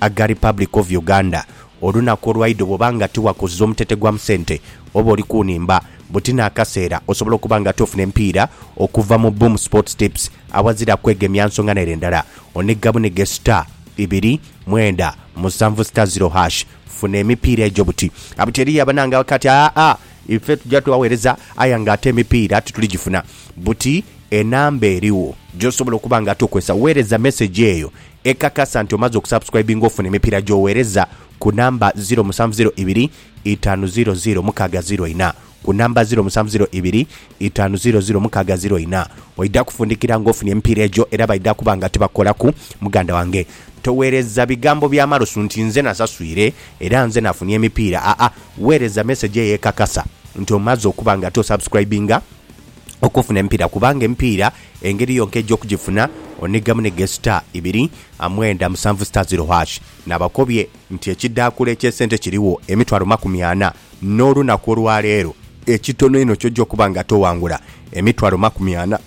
aga Republic of Uganda. Olunaku olwaidha bwoba nga tiwakoze omutete gwa mu sente oba oli ku nhimba, buti n'akaseera osobola okuba nga tofuna emipiira okuva mu Boom Sports Tips awazira kwegemya nsonga n'ere ndala. Onigga bunige star, ibiri, mwenda, musanvu star ziro hash funa emipiira egyo buti. Buti eriyo abanange abakali ati aa ife tuja tughawereza aye nga ate emipiira tituli gifuna. Buti enamba erigho gyosobola okuba nga tokozesa. Wereza message eyo Ekakasa nti omaze okusubscribinga ofuna emipiira gy'oweereza ku namba ziro musanvu ziro ibiri itaanu ziro ziro mukaaga ziro ina ku namba ziro musanvu ziro ibiri itaanu ziro ziro mukaaga ziro ina. Oidha kufundikira nga ofunye emipiira egyo era baidha kuba nga tibakukolaku. Muganda wange toweereza bigambo bya malosu nti nze nasaswire era nze nafunye emipiira aa weereza mesegi eyo ekakasa nti omaze okuba nga ate osubscribinga. okufuna emipiira kubanga emipiira engeri yonka egy'okugifuna onhigamu ni ghesuta ibiri, mwenda, musanvu suta ziro hash. Nabakobye nti ekidhaakula eky'esente kirigho emitwalo makumi ana n'olunaku olwaleero. Ekitono einho ky'oja okuba nga toghangula emitwalo makumi ana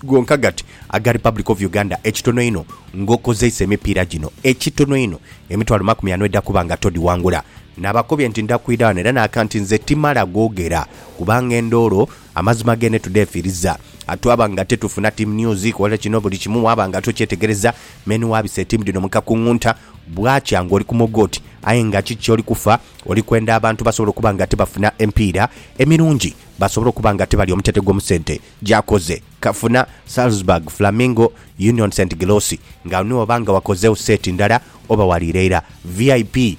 gonka gati aga Republic of Uganda, ekitono einho ng'okozeisa emipiira gino, ekitono einho emitwalo makumi ana oidha kuba nga todhighangula. Nabakobye nti ndhakwidha ghano era n'aka nti nze timala googera. kubanga endoolo amazima gene tudhefiiriza. Twaba nga tetufuna Team News kola kino buli kimu waaba nga tokyetegereza. Many wabisa etiimu dhino mu kakungunta, bwakya ng'oli ku moga oti aye nga kiki ky'oli kufa? Oli kwenda abantu basobole okuba nga tibafuna emipiira emirungi, basobole okuba nga tibalya omutete gw'omu sente gy'akoze. Kafuna, Salzburg, Flamingo, Union St Gilosi nga niwo oba nga wakozeegho seeti ndala oba waliira ira. VIP.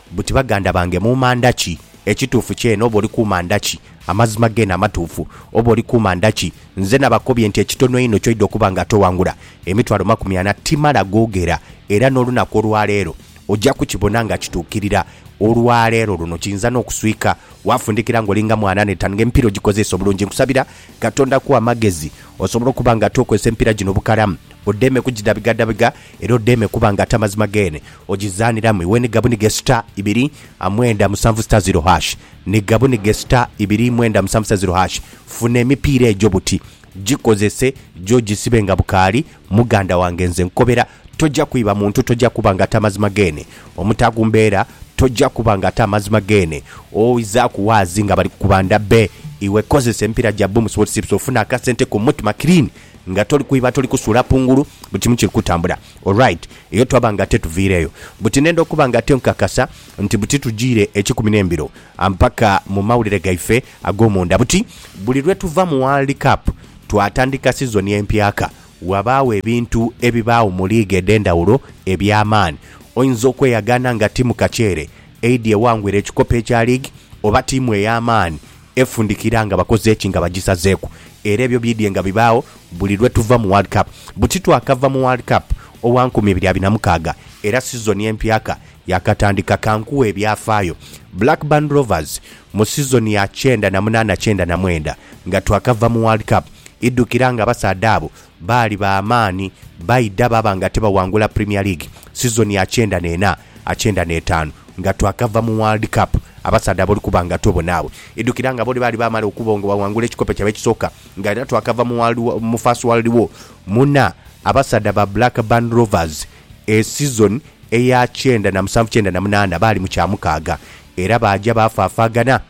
buti baganda bange muuma ndhaki? Ekituufu kyene oba oli kuuma ndhaki? Amazima geene amatuufu oba oli kuuma ndhaki? Nze nabakobye nti ekitono einho ky'oidha okuba nga toghangula, emitwalo makumi ana, timala googera. Era n'olunaku olwaleero oja kukibona nga kituukirira. Olwaleero luno kiyinza n'okuswika waafundikira ng'oli nga mwana n'etaanu ng'emipiira ogikozeesa obulungi. Nkusabira Katonda akuwe amagezi osobole okuba nga tookozesa emipiira gino bukalamu, odheeme kugidhabigadabiga. era odheeme kuba nga ate amazima geene ogizaaniramu iwe ni gabunige sita ibiri amwenda musanvu sita ziro hash ni gabunige sita ibiri mwenda musanvu sita ziro hash Funa emipiira egyo buti gikozese gye ogisibe nga bukaali Muganda wange nze nkukobera tojja kwiba muntu tojja kuba nga ate amazima geene omutaaku mbeera tojja kuba nga ate amazima geene oizaaku waazi nga bali kukubanda be iwe kozesa emipiira gya Boom Sports Tips ofune akasente ko Mutma Clean Nga toli kwiba toli kusuula kungulu buli kimu kiri kutambula alright eyo twaba nga ate tuviireyo buti nenda okuba nga ate nkukakasa nti buti tujiire ekikumi nembiro mpaka mumawulire gaife agomunda buti buli lwetuva mu world cup twatandika sizoni empyaka wabaagho ebintu ebibaagho mu league edhendawulo ebyamaani oyinza okweyagaana nga tiimu kaceere eidhi ewangwire ekikopo ekya league oba tiimu eyamaani Efundikira nga bakoze ki nga bagisazeeku? Era ebyo bidhye nga bibaagho buli lwe tuva mu World Cup. Buti twakava mu World Cup owa nkumi ibiri abiri na mukaaga era sizoni empyaka yaakatandika. Ka nkughe ebyafaayo. Blackburn Rovers mu sizoni ya kyenda na munaana kyenda na mwenda nga twakava mu World Cup, idhukira nga abasaadha abo baali ba maani baidha baaba nga tibawangula Premier League sizoni ya kyenda n'ena. a kyenda n'etaanu nga twakava mu World Cup, abasaadha ab'oli kuba nga to bona abo. Idhukira nga bo ni baali baamala okuba nga baghangula ekikopo kyaibwe ekisooka nga era twakava mu World War, mu First World War. Muna, abasaadha ba Blackburn Rovers e sizoni eya kyenda na musanvu kyenda na munaana baali mu kyamukaaga era baaja baafaafaagana.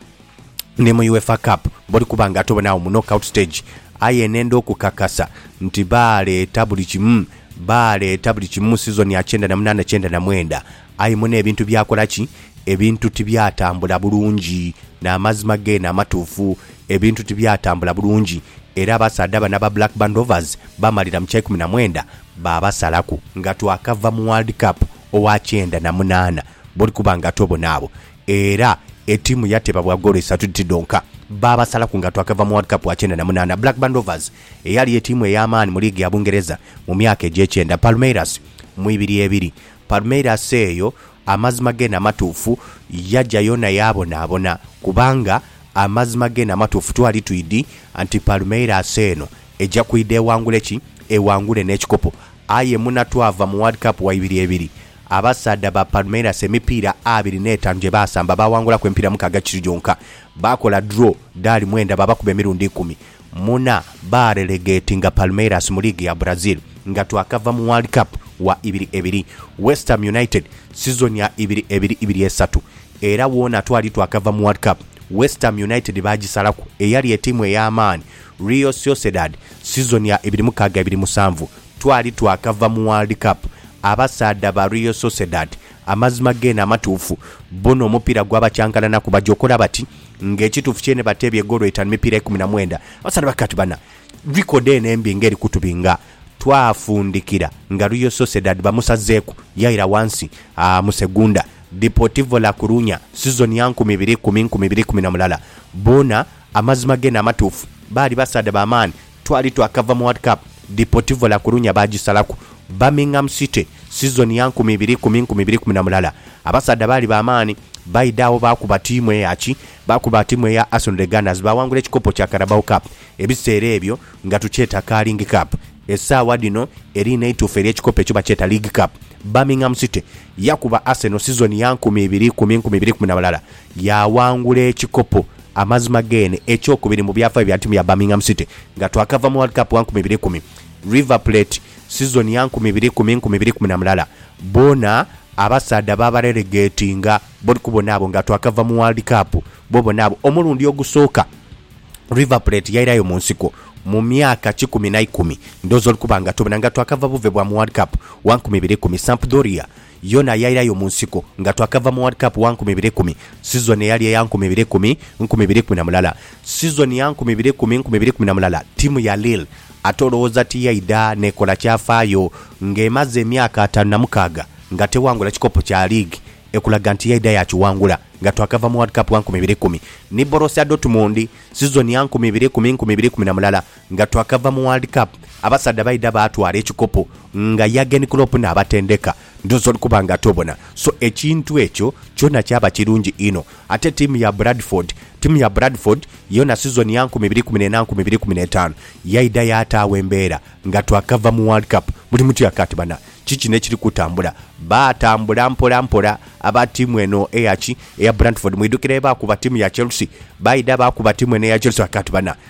ni mu UEFA Cup bali kuba nga ate oba n'agho mu knockout stage. Aye nenda okukakasa nti baaleeta buli kimu, baaleeta buli kimu mu sizoni ya kyenda na munaana kyenda na mwenda, aye mune ebintu byakola ki? Ebintu tibyatambula bulungi. N'amazima geene amatuufu, ebintu tibyatambula bulungi era abasaadha bano aba Blackburn Rovers baamalira mu kyaikumi na mwenda baabasalaku. Nga twakava mu World Cup owa kyenda na munaana bali kuba nga ate oba n'agho. Era etiimu yateba bwa goolo isatu dhiti dhonka. Baabasalaku nga twakava mu World Cup wa kyenda na munaana. Blackburn Rovers eyali etiimu ey'amaani mu liigi ya Bungereza mu myaka egy'ekyenda. Palmeiras mu ibiri ebiri. Palmeiras eyo amazima geene amatuufu yaja yoona yaabonaabona kubanga amazima geene amatuufu twali twidhi nti Palmeiras eno Eja kwidha ewangule ki? Ewangule n'ekikopo. Aye muna twava mu World Cup wa ibiri ebiri, abasaadha ba Palmeiras emipiira abiri n'etaanu gye baasamba baawangulaku emipiira mukaaga kiri gyonka. Baakola draw dhaali mwenda baabakuba emirundi ikumi. Muna baarelegatinga Palmeiras mu liigi ya Brazil nga twakava mu World Cup wa ibiri ebiri. West Ham United sizoni ya ibiri ebiri ibiri esatu era woona twali twakava mu World Cup, West Ham United baagisalaku eyali etiimu ey'amaani Real Sociedad sizoni ya ibiri mukaaga ibiri musanvu, Twali twakava mu World Cup abasaadha ba Real Sociedad amazima geene amatuufu bona omupiira gwabakyankalana ku bajokola bati nga ekituufu kyeene bateebye goolo itaanu mipiira ikumi na mwenda. Abasaadha bakaaba ati bana record eno embi nga eri kutubinga twafundikira nga Real Sociedad bamusazeeku yaira wansi mu Segunda. Deportivo La Coruña sizoni ya nkumi ibiri ikumi, nkumi ibiri ikumi na mulala bona Amazima geene amatuufu, baali basaadha ba maani. Twali twakava mu World Cup, Deportivo La Coruña baagisalaku. Birmingham City, sizoni ya nkumi ibiri ikumi, nkumi ibiri ikumi na mulala. Abasaadha baali ba maani. Baidha agho baakuba tiimu eya ki? Baakuba tiimu eya Arsenal The Gunners, baawangula ekikopo kya Carabao Cup. Ebiseera ebyo nga tukyeta Carling Cup. Esaawa dhino eriina eituufu ery'ekikopo ekyo bakyeta League Cup. Birmingham City yakuba Arsenal sizoni ya nkumi ibiri ikumi, nkumi ibiri ikumi na mulala. Yaawangula ekikopo amazima geene ekyokubiri mu byafaayo bya ttiimu ya Birmingham City nga twakava mu World Cup wa nkumi ibiri kumi, River Plate sizoni ya nkumi ibiri kumi, nkumi ibiri kumi na mulala boona abasaadha baabarelegatinga bodi ku bona abo nga twakava mu World Cup bo bona abo omulundi ogusooka River Plate yairayo mu nsiko mu myaka kikumi na ikumi ndhooza oli kuba nga tobona nga twakava buve bwa mu World Cup wa nkumi ibiri kumi, Sampdoria Yona yairayo mu nsiko nga twakava mu World Cup wa nkumi ibiri kumi, sizoni eyali eya nkumi ibiri kumi, nkumi ibiri kumi na mulala. Sizoni ya nkumi ibiri kumi, nkumi ibiri kumi na mulala tiimu ya Lille ate olowooza tiyaidha n'ekola kyafaayo nga emaze emyaka ataanu na mukaaga nga tewangula kikopo kya liigi ekulaga nti yaidha yaakiwangula nga twakava mu World Cup wa nkumi ibiri kumi ni Borussia Dortmund sizoni ya nkumi ibiri kumi, nkumi ibiri kumi na mulala. Nga twakava mu World Cup, abasaadha baidha baatwala ekikopo nga Jurgen Klopp n'abatendeka. Ndhoozi oli kuba nga tobona. So ekintu ekyo kyona kyaba kirungi inho. Ate tiimu ya Bradford, tiimu ya Bradford yona sizoni ya nkumi ibiri kumi n'ena nkumi ibiri kumi n'etaanu yaidha yaataagho embeera nga twakava mu World Cup. Buli muntu yaaka ati bana ki kino ekiri kutambula? Baatambula mpolampola aba tiimu eno eya ki? Eya Bradford. Mwidhukira bye baakuba tiimu ya Chelsea? Baidha baakuba tiimu eno eya Chelsea baaka ati bana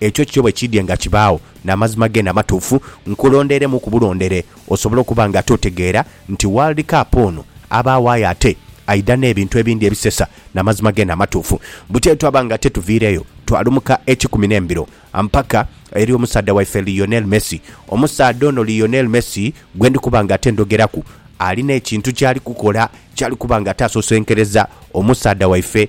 Ekyo kyo bwe kiidyenga kibaagho n'amazima geene amatuufu, nkulondeiremu ku bulondere osobole okuba nga totegeera nti World Cup ono abaagho aye ate aidha n'ebintu ebindi ebisesa n'amazima geene amatuufu. Butyo twaba nga tetuviireyo, twalumuka ekikumi n'embiro mpaka eri omusaadha waife Lionel Messi. Omusaadha ono Lionel Messi gwe ndi kuba nga ate ndhogeraku, alina ekintu ky'ali kukola ky'ali kuba nga ate asosenkereza omusaadha waife,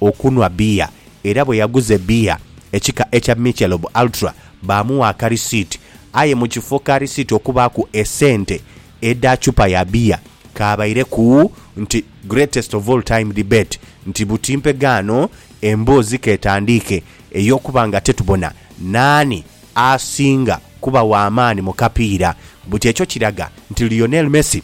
okunhwa bbiya era bwe yaguze bbiya ekika ekya Michelob Ultra baamugha akarisiiti aye mu kifo ka risiiti okubaaku esente edha chupa ya bbiya kaabaireku nti Greatest of all time debate nti buti mpegaano emboozi k'etandiike ey'okuba nga tetubona naani asinga kuba w'amaani mu kapiira buti ekyo kiraga nti Lionel Messi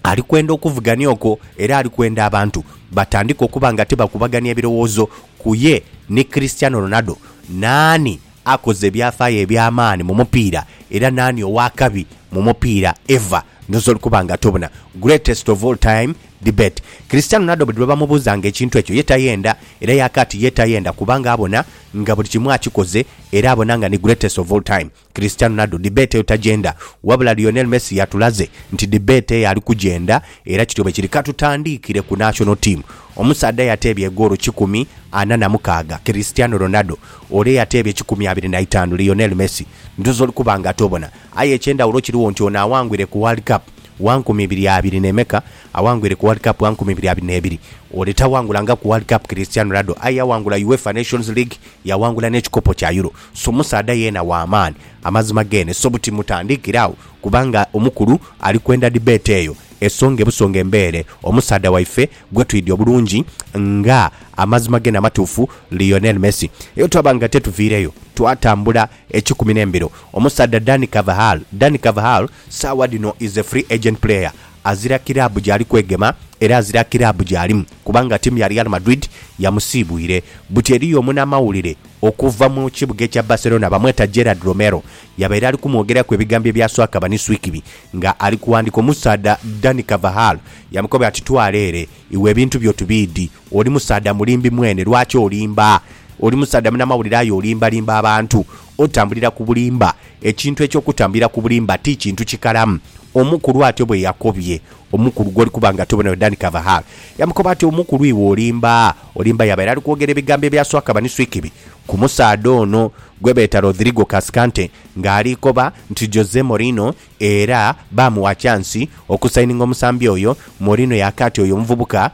Ali kwenda okuvugania okwo era ali kwenda abantu batandike okuba nga tibakubagania birowoozo ku ye ni Cristiano Ronaldo, naani akoze ebyafaayo eby'amaani mu mupiira era naani ow'akabi mu mupiira ever. Ndhooza oli kuba nga tobuna. Greatest of all time debate. Cristiano Ronaldo buli lwe bamubuuzanga ekintu ekyo ye tayenda era yaakaati ye tayenda kubanga abona nga buli kimu akikoze era abona nga ni greatest of all time. Cristiano Ronaldo debate eyo tagyenda, wabula Lionel Messi yatulaze nti debate eyo ali kugyenda era kityo bwe kiri. Ka tutandiikire ku national team. Omusaadha eyateebye egoolo kikumi ana na mukaaga, Cristiano Ronaldo, ole eyateebye kikumi abiri na itaanu, Lionel Messi, ndhooza oli kuba nga tobona. Aye eky'endhawulo kirigho nti ono aghangwire ku World Cup wa nkumi ibiri abiri n'emeka, aghangwire ku World Cup wa nkumi ibiri abiri n'ebiri. Ole taghangula nga ku World Cup Cristiano Ronaldo aye yaghangula UEFA Nations League, yaghangula n'ekikopo kya Euro. So musaadha yeena wa maani. Amazima geene so buti mutandiikire agho kubanga omukulu ali kwenda debate eyo esonge busonge embeere omusaadha waife gwetwidhi obulungi nga amazima geene amatuufu Lionel Messi. Eyo twaba nga tetuviireyo twatambula ekikumi n'embiro. Omusaadha Dani Carvajal Dani Carvajal saawa dhino is a free agent player azira kiraabu gyali kwegema era azira kiraabu gyalimu kubanga tiimu ya Real Madrid yamusiibwire. Buti eriyo omunamawulire Okuva mu kibuga ekya Barcelona bamweta Gerard Romero yabaire ali kumwogeraku ebigambo ebya swaka baniswikibi nga ali kuwandika omusaadha Dani Carvajal yamukoba ati twala ere iwe ebintu byo tubiidi oli musaadha mulimbi mwene lwaki olimba oli musaadha munamawulire aye olimbalimba abantu otambulira ku bulimba ekintu ekyokutambulira ku bulimba ti kintu kikalamu omukulu atyo bweyakobye Omukulu gw'oli kuba nga tobonayo Dan Carvajal yamukoba ati, Omukulu iwe olimba, olimba. Yabaire ali kwogera ebigambo ebya swakaba ni swikibi ku musaadha ono gwebeeta Rodrigo Cascante ng'ali koba nti Jose Mourinho era baamugha kyansi okusayininga omusambi oyo. Mourinho yaaka ati oyo omuvubuka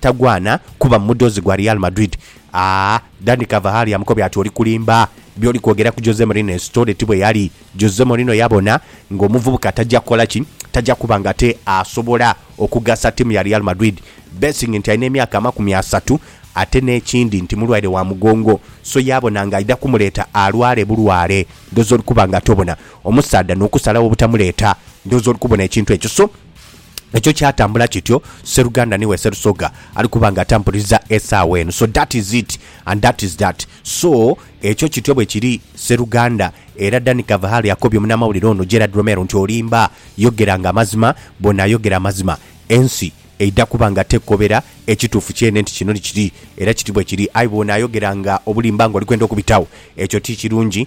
tagwana kuba mudhozi gwa Real Madrid Aah Danny Cavahari amukobye ati oli kulimba, byoli kwogera ku Jose Mourinho eyo story ti bweyali. Jose Mourinho yabona nga omuvubuka taja kukola ki? Taja kuba nga ate asobola okugasa tiimu ya Real Madrid being nti alina emyaka amakumi asatu ate n'ekindi nti mulwaire wa mugongo so yabona nga aidha kumuleeta alwale bulwale. Ndhooza oli kuba nga ate obona omusaadha n'okusalagho obutamuleeta ndhooza oli kubona ekintu ekyo so. Ekyo kyatambula kityo seruganda niwe serusoga ali kuba nga atampuliza esaawa eno so that is it and that is that so ekyo kityo bwekiri seruganda era Dan Kavahari akobye omunamawulire ono Gerald Romero nti olimba yogera nga amazima bwonayogera amazima ensi eidha kuba nga tekukobera ekituufu kyene nti kino nikiri era kiti bwekiri aye bwonayogera nga obulimba nga olikwenda okubitagho ekyo tikirungi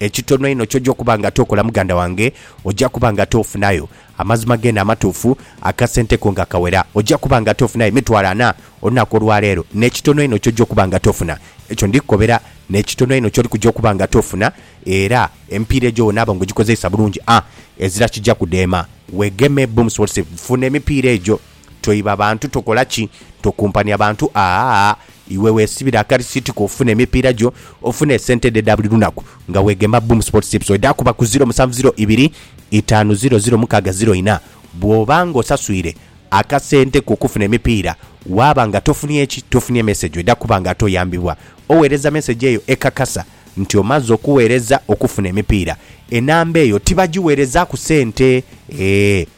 Ekitono einho ky'oja okuba nga tookola muganda wange, oja kuba nga toofunayo amazima geene amatuufu, akasente ko nga kawera. Oja kuba nga toofunayo emitwalo ana olunaku olwa leero. N'ekitono einho ky'oja okuba nga toofuna, ekyo ndi kukobera. N'ekitono einho ky'oli kuja okuba nga toofuna, era emipiira egyo w'onaaba nga ogikozeisa bulungi, a ezira kija kudheema. Weegeme bumusobozese, funa emipiira egyo. Toiba bantu tokola ki tokumpania bantu aah iwe wesibire akarisitiko ofune emipiira gyo ofune esente dho edha buli lunaku nga weghemba Boom Sports Tips edhaakuba ku ziro musanvu ziro ibiri itaanu ziro ziro mukaaga ziro ina bw'oba nga osaswire akasente ko okufuna emipiira waaba nga tofunye ki tofunye mesegi edha kuba nga ate oyambibwa oweereza mesegi eyo ekakasa nti omaze okuweereza okufuna emipiira enamba eyo tibagiweerezaaku sente eeh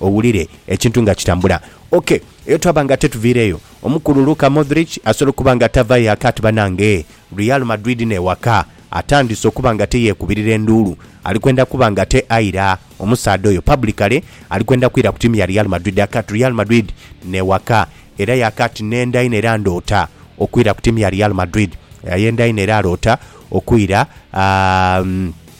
Owulire ekintu nga kitambula. Ok, eyo twaba nga tetuviireyo. Omukulu Luka Modric asobola okuba nga tavaayo aka ati banange e Real Madrid n'ewaka. Atandise okuba nga ate yeekubirira enduulu. Ali kwenda kuba nga ate aira omusaadha oyo publicly. Ali kwenda kwira ku tiimu ya Real Madrid aka ati Real Madrid n'ewaka. Era y'aka ati nenda inho era ndoota okwira ku tiimu ya Real Madrid. Ayenda inho era aloota okwira, aa,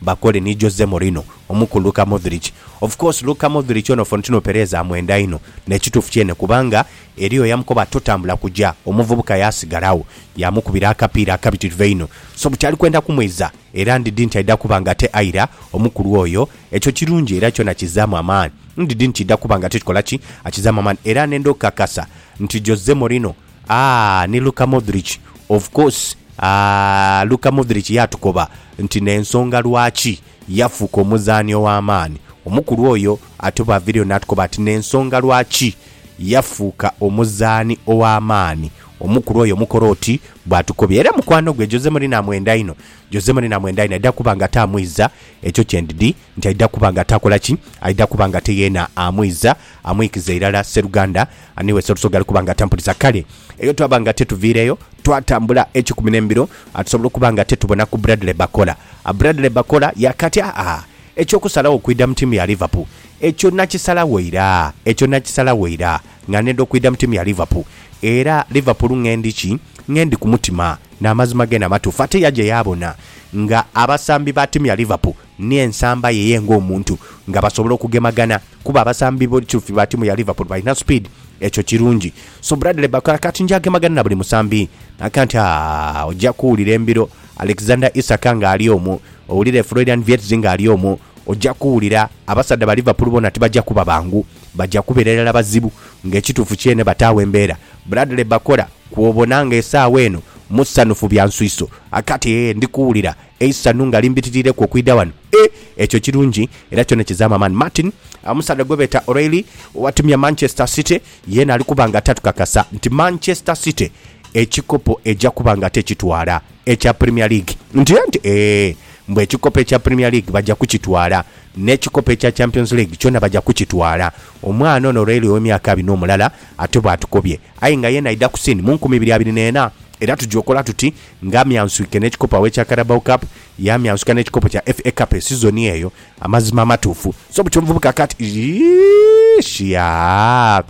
Bakole ni Jose Mourinho omu ku Luka Modric. Of course Luka Modric ono Fontino Perez amwenda inho, n'ekituufu kyene kubanga eriyo eyamukoba ati totambula kuja, omuvubuka yaasigala agho yaamukubira akapiira akabitirivu einho. So buti ali kwenda kumwiza era ndidhi nti aidha kuba nga ate aira omukulu oyo. Ekyo kirungi era kyona kizzaamu amaani. Ndidhi nti kidha kuba nga ate kikola ki? Akizzaamu amaani. Era nenda okukakasa nti Jose Mourinho Aah ni Luka Modric of course aah Luka Modric yaatukoba nti n'ensonga lwaki yafuuka omuzaani ow'amaani omukulu oyo ate bw'aviriyo naatukoba ati n'ensonga lwaki yafuuka omuzaani ow'amaani omukulu oyo omukora oti bw'atukobye era mukwano gwe Jose Mourinho amwenda inho Jose Mourinho amwenda inho aidha kuba ng'ate amwiza ekyo kye ndidi nti aidha kuba ng'ate akola ki? aidha kuba ng'ate yeena amwiza amwikiza irala sseruganda Ani wese Orusoga ali kuba nga atampuliza kale eyo twaba nga tetuviireyo, twatambula ekikumi n'embiro, atusobola okuba nga tetubona ku Bradley Bakola. A Bradley Bakola yaakati, Aa-aa, eky'okusalagho okwidha mu ttiimu ya Liverpool, ekyo nakisalagho ira, ekyo nakisalagho ira nga neenda okwidha mu ttiimu ya Liverpool. Era Liverpool ng'endi ki? Ng'endi ku mutima. N'amazima geene amatuufu. Ate yaja yaabona nga abasambi ba ttiimu ya Liverpool Ni ensamba ye ye ng'omuntu nga basobola okugemagana kuba abasambi b'ekyufi ba tiimu ya Liverpool balina supiidi, ekyo kirungi. So Bradley Barcola kati nja gemagana na buli musambi? Naka nti, Aah, ojja kuwulira embiro. Alexander Isak ng'ali omwo, owulire Florian Wirtz ng'ali omwo, ojja kuwulira. Abasaadha ba Liverpool boona tibajja kuba bangu, bajja kubeera irala bazibu. Ng'ekituufu kyeene bataagho embeera. Bradley Barcola, kw'obona ng'esaawa eno musanhufu bya nswiso. Aka ati, Eeh, ndi kuwulira. eisanhu nga limbitiriireku okwidha ghano. E! Ekyo kirungi era kyona kizaamu amaani. Martin, omusaadha gwe beeta O'Reilly owa tiimu ya Manchester City, yeena ali kuba nga tatukakasa nti Manchester City ekikopo eja kuba nga tekitwala ekya Premier League. Ntya nti, ee, mbu ekikopo ekya Premier League baja kukitwala, n'ekikopo ekya Champions League kyona baja kukitwala. Omwana ono O'Reilly ow'emyaka abina omulala ate bw'atukobye. Aye nga yeena aidha ku siin mu nkumi ibiri abiri n'ena, era tugya okola tuti Nga amyansuike n'ekikopo aw'ekya Carabao Cup, yaamyansuka n'ekikopo kya FA Cup esizoni eyo. Amazima amatuufu. So bukya omuvubuka kati, iish yaa,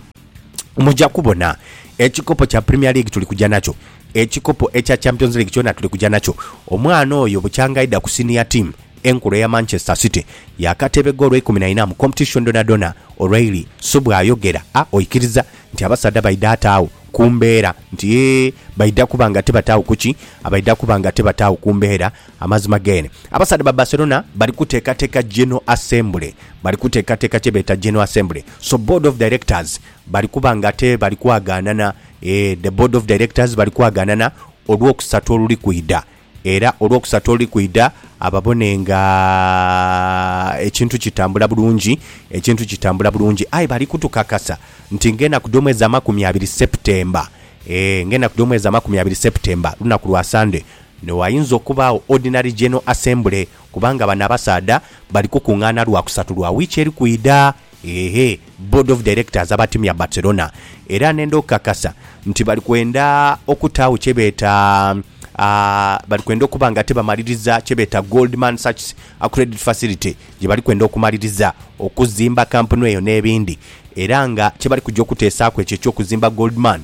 muja kubona. Ekikopo kya Premier League tuli kuja nakyo. Ekikopo ekya Champions League kyona tuli kuja nakyo. Omwana oyo bukyanga aidha ku senior team enkulu eya Manchester City, yaakatebegha olweikumi na ina mu competition dhonadhona, O'Reilly subwayogera. A, oikiriza? nti abasaadha baidha ata agho ku mbeera nti ee baidha kuba nga tibataagho ku ki? Abaidha kuba nga tibataagho ku mbeera. Amazima geene, abasaadha ba Barcelona bali kuteekateeka General Assembly. Bali kuteekateeka kye beeta General Assembly. So Board of Directors bali kuba nga ate bali kwagaanana. Ee, the Board of Directors bali kwagaanana Olwokusatu oluli kwidha. Era olwokusatu oluli kwidha ababone nga ekintu kitambula bulungi, ekintu kitambula bulungi. Aye bali kutukakasa nti ng'enaku dh'omwezi amakumi abiri September, ee, ng'enaku dh'omwezi amakumi abiri September, lunaku lwa Sunday, ni wainza okubaagho Ordinary General Assembly, kubanga bano abasaadha bali kukung'aana Lwakusatu lwa wiiki eri kwidha. Eehhe, Board of Directors abatimya Barcelona era nenda okukakasa nti bali kwenda okutaagho kye beeta bali kwenda okuba nga tibamaliriza kye beeta Goldman Sachs Credit Facility gye bali kwenda okumaliriza okuzimba kampuni eyo n'ebindi era nga kye bali kuja okuteesaaku ekyo eky'okuzimba Goldman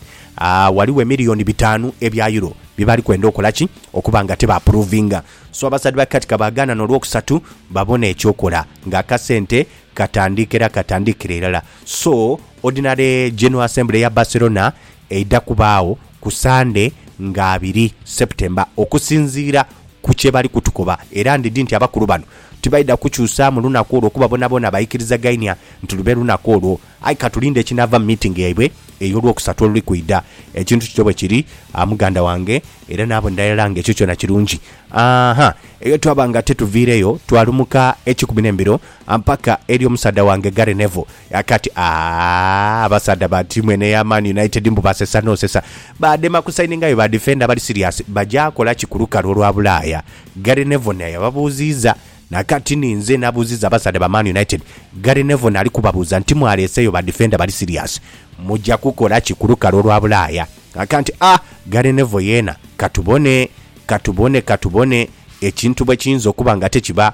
ghaligho emiliyoni bitaanu ebya Euro bye bali kwenda okola ki okuba nga tibapuruvinga so abasadhi ba Katika baagaana n'olwokusatu babone eky'okola ng'akasente Katandike era katandikire irala so Ordinary General Assembly ya Barcelona eidha kubaagho ku Sande nga abiri September okusinziira ku kye bali kutukoba era ndidhi nti abakulu bano tibaidha kukyusaamu lunaku olwo kuba boonaboona baikirizagainia nti lube lunaku olwo aye katulinde ekinaava mu meeting yaibwe ey'Olwokusatu oluli kwidha. Ekintu kityo bwe kiri muganda wange era n'abo ni irala nga ekyo kyona kirungi. Ahaa eyo twaba nga tetuviireyo twalumuka ekikumi n'embiro. Ampaka eri omusaadha wange Gary Neville yakati, Aah, abasaadha ba tiimu eno eya Man United mbu basesa n'osesa. Baadema kusaininga aye badifenda abali siriyasi baja kola ki ku lukalu olwa Bulaaya? Gary Neville naye yababuuziiza. Na kati ni nze nabuuziza abasaadha ba Man United. Gary Neville naali kubabuuza nti, Mwaleeseeyo badifenda bali siriyasi? Muja kukola ki ku lukalu olwa Bulaaya? Akanti, Ah, Gary Neville yeena, ka tubone. Ka tubone, ka tubone. Ekintu bwe kiyinza okuba nga tekiba.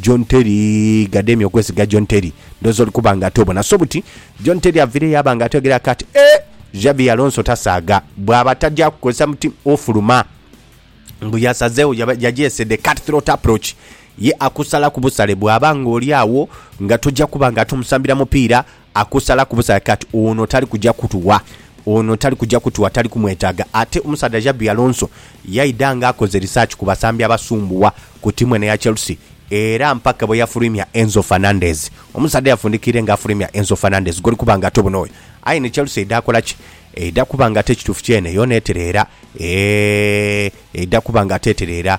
John Terry gademye okwesiga John Terry ndhowoza oli kuba nga ate obona so buti John Terry avire yaaba nga atwegera aka ati eeh Xabi Alonso tasaaga bwaba tagya kukozesa muti ofuluma mbu yasazegho yagyese the cut throat approach ye akusalaku busale bwaba nga oli agho nga togya kuba nga ate omusambira mupiira Akusalaku busalake ati ono tali kuja kutuwa, ono tali kuja kutuwa, tali kumwetaaga. Ate omusaadha Xabi Alonso yaidha nga akoze research ku basambi abasumbuwa ku tiimu eno eya Chelsea era mpaka bwe yafulwimya Enzo Fernandez. Omusaadha yafundikiire nga afulwimya Enzo Fernandez goli kuba nga tobono oyo. Aye ni Chelsea eidha kola ki? Eidha kuba nga ate ekituufu kyeene yoona etereera? Eehh eidha kuba nga ate etereera.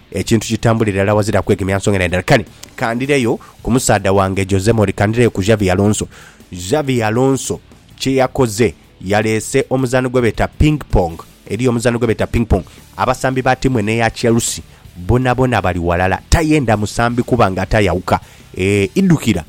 Ekintu kitambulire irala wazira kwegemya nsonga na ndala. Kale kandireyo ku musaadha wange Jose Mori, kandireyo ku Xavi Alonso. Xavi Alonso kye yakoze, yaleese omuzaano gwe beeta Ping Pong. Eriyo omuzaano gwe beeta Ping Pong. Abasambi ba tiimu eno eya Chelsea bonabona bali walala. Tayenda musambi kuba nga ate ayawuka. Eeh idhukira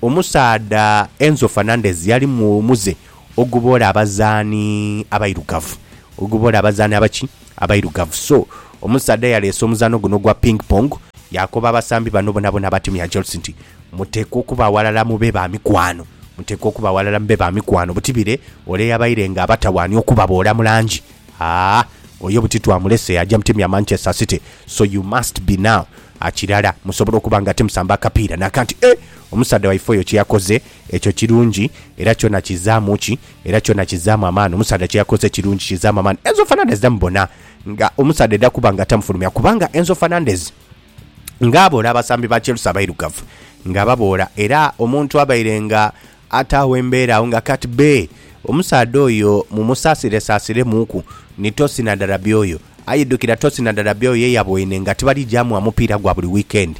omusaadha Enzo Fernandez yali muze Oguboola abazaani abairugavu. Oguboola abazaani abaki? Abairugavu. So, omusaadha yaleese omuzaano guno ogwa Ping Pong, yaakoba abasambi bano bonabona aba tiimu ya Chelsea nti, Muteekwa okuba aghalala mube ba mikwano. Muteekwa okuba aghalala mube ba mikwano. Buti bire ole yabaire nga abatawaanya okubaboola mu langi? Haa, oyo buti twamulese yaaja mu tiimu ya Manchester City. So you must be now a kirala musobola okuba nga timusamba akapiira. Naakanti, eh! Omusaadha waife oyo kye yakoze Ekyo kirungi, era kyona kizaamu ki? Era kyona kizaamu amaani. Omusaadha kye yakoze kirungi, kizaamu amaani. Enzo Fernandez tamubona nga omusaadha aidha kuba nga tamufulumya, kubanga Enzo Fernandez nga aboola abasambi ba Chelsea abairugavu nga ababoola, era omuntu abaire nga ataagho embeera agho nga kati bbe omusaadha oyo mumusaasiresaasiremuuku ni Tosin Adarabioyo. Aye idhukira Tosin Adarabioyo ye yaboine nga tibali gya mugha mupiira gwa buli wiikendi.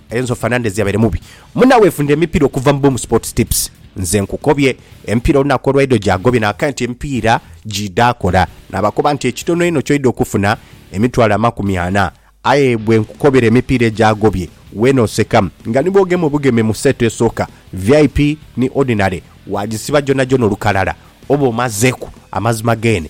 Enzo Fernandez yabaire mubi muna wefunda emipiira okuva mu Boom Sports Tips. Nze nkukobye, emipiira olunaku olwaidho gyagobye nakae nti emipiira gyidha kola. Nabakoba nti ekitono einho kyoidha okufuna emitwalo amakumi ana. Aye bwenkukobera emipiira egyagobye weena oseka nga ni bwogema obugeme mu seeto esooka, vip ni ordinary, wagisiba gyonhagyona olukalala oba omazeku amazima geene.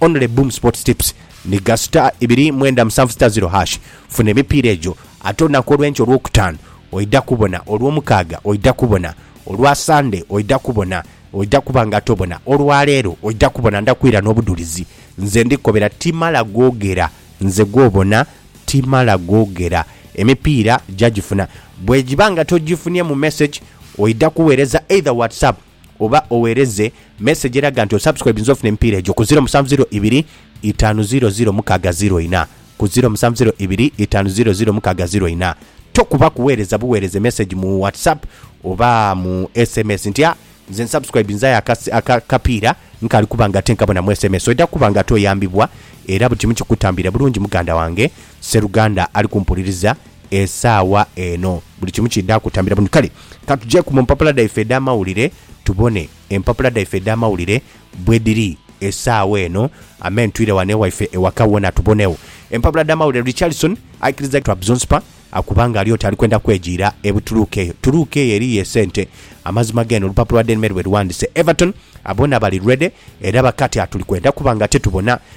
Only Boom Sports Tips nhiga star ibiri mwenda musanvu star ziro hash funa emipiira egyo ate olunaku olwenkya olwokutaanu oidha kubona, olwomukaaga oidha kubona, olwa sande oidha kubona oidha kuba nga tobona, olwaleero oidha kubona ndha kwira nobudhulizi nze ndi kobera timala gogera nze gwobona timala gogera emipiira jagifuna bwegiba nga togifunye mu message oidha kuwereza either whatsapp. oba owereze message eraga nti osubscribinze ofune emipiira egyo ku ziro musanvu ziro ibiri itaanu ziro ziro mukaaga ziro ina ku ziro musanvu ziro ibiri itaanu ziro ziro mukaaga ziro ina Tokuba kuwereza buwereze message mu WhatsApp oba mu sms nti a nze nsubscribinze aye aka akapiira nkaali kuba nga ate nkabonamu sms oidha kuba nga ate oyambibwa era buli kimu kikutambire bulungi muganda wange sseruganda ali kumpuliriza esaawa eno buli kimu kidha kutambira bulungi kale Ka tujeeku mu mpapula dhaife edh'amawulire tubone empapula dhaife edh'amawulire bwe dhiri esaawa eno. Amen. Twire wano ewaife ewaka wona tubonegho empapula dh'amawulire. Richardson aikiriza Trabzonspor akuba nga ali oti ali kwenda kwejiira e Butuluuka. Eyo Tuluuka eyo eriyo esente? Amazima g'eno olupapula Daily Mail bwe lughandise, Everton boona bali ready era bakati atuli kwenda kuba nga tetubona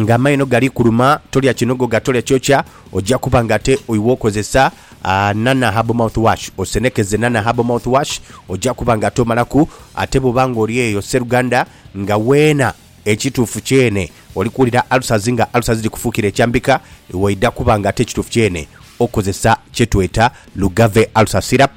Nga amaino gali kuluma, tolya kinogoga, tolya kyokya, oja kuba nga ate oiwe okozesa Nana Herbal Mouth Wash. Osenekeze Nana Herbal Mouth Wash, oja kuba nga ate omalaku. Ate bwoba nga oli eyo sseruganda nga weena, ekituufu kyene oli kuwulira ulcers nga ulcers dhikufuukira ekyambika, iwe oidha kuba nga ate ekituufu kyene okozesa kyetweta Lugave Ulcer Syrup.